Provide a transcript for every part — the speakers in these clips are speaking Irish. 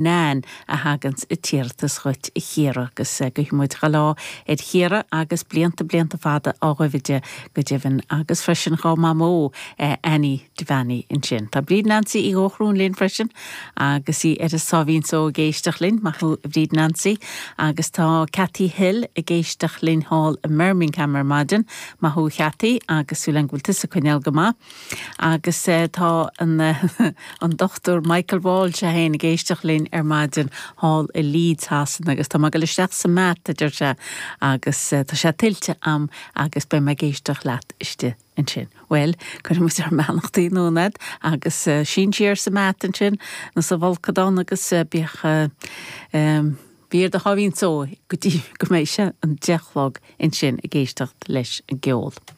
Nan, a thaganns an t-iarratas dhuit a Chiara agus guidh muid dea-lá ar Chiara agus blianta blianta fada ina dhiaidh di go deimhin agus freisin dhá mamó Annie Devaney ansin. Tá Bríd Nancy Uí Dhóchrún linn freisin agus í ar a sáimhín só ag éisteacht linn, maith thú a Bhríd Nancy agus tá Cathy Hill ag éisteacht linn thall i mBirmingham ar maidin, maith thú a Chathy agus súil a'm go bhfuil tusa ag coinneáil go maith. Agus tá an Dr Michael Walsh, é féin, ag éisteacht linn ar maidin thall i Leeds Shasana, agus tá mé ag dul isteach sa mbath, a deir sé, agus tá sé tuillte a'm agus beidh mé ag éisteacht leat istigh ansin. Bhuel, cuirfidh muid ár mbeannachtaí anonn a'd agus sín siar sa mbath ansin nó sa bhfolcadán agus bí, bí ar do sháimhín só go dtí go mbeidh sé an deich a chlog ansin ag éisteacht leis an gceol.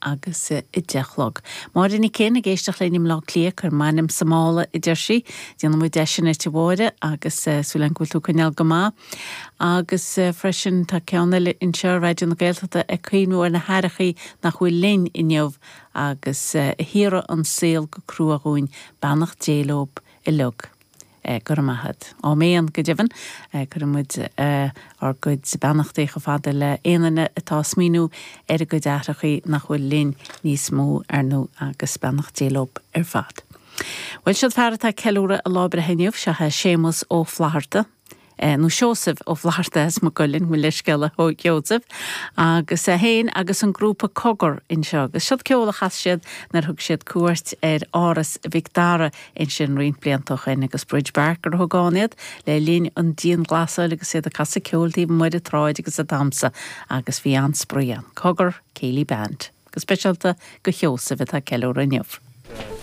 agus a deich a chlog. Máire Nic Fhinn ag éisteacht linn i mBleá Cliath, cuir m'ainm sa mála a deir sí. Déanfaidh muid é sin dhuit a Mháire agus súil againn go bhfuil tú ag coinneáil go maith. Agus freisin tá ceann eile anseo, Raidió na Gaeltachta ag cuimhniú ar na haithreachaí nach bhfuil linn inniu agus a shaothraigh an saol go crua dhúinn, beannacht Dé leob uilig. Eh, go raibh maith a't. Áiméan go deimhin. Eh, cuireann muid, eh, ár gcuid beannachtaí chomh fada le aon duine atá a' smaoiniú ar a gcuid aithreachaí nach bhfuil linn níos mó, ar ndú, agus beannacht Dé leob ar fad. Bhuel, siod fear atá a' ceiliúradh a lá breithe inniu, seo é Séamas Ó Flatharta. eh, nó Seosamh Ó Flaithearta as Maigh Cuilinn, mo leithscéal a Sheosaimh, agus é féin agus an grúpa Cogar anseo agus seod ceoil a chas siad nuair a thug siad cuairt ar Áras Mhic Dara ansin roinnt blianta ó shin agus Brídge Barker a thug ann iad le linn an dianghlasála agus iad ag casadh ceoil taobh amuigh sa tsráid agus ag damsa agus bhí an-spraoi ann. Cogar, Céilí Band. Go speisialta do Sheosamh atá ag ceiliúradh inniu.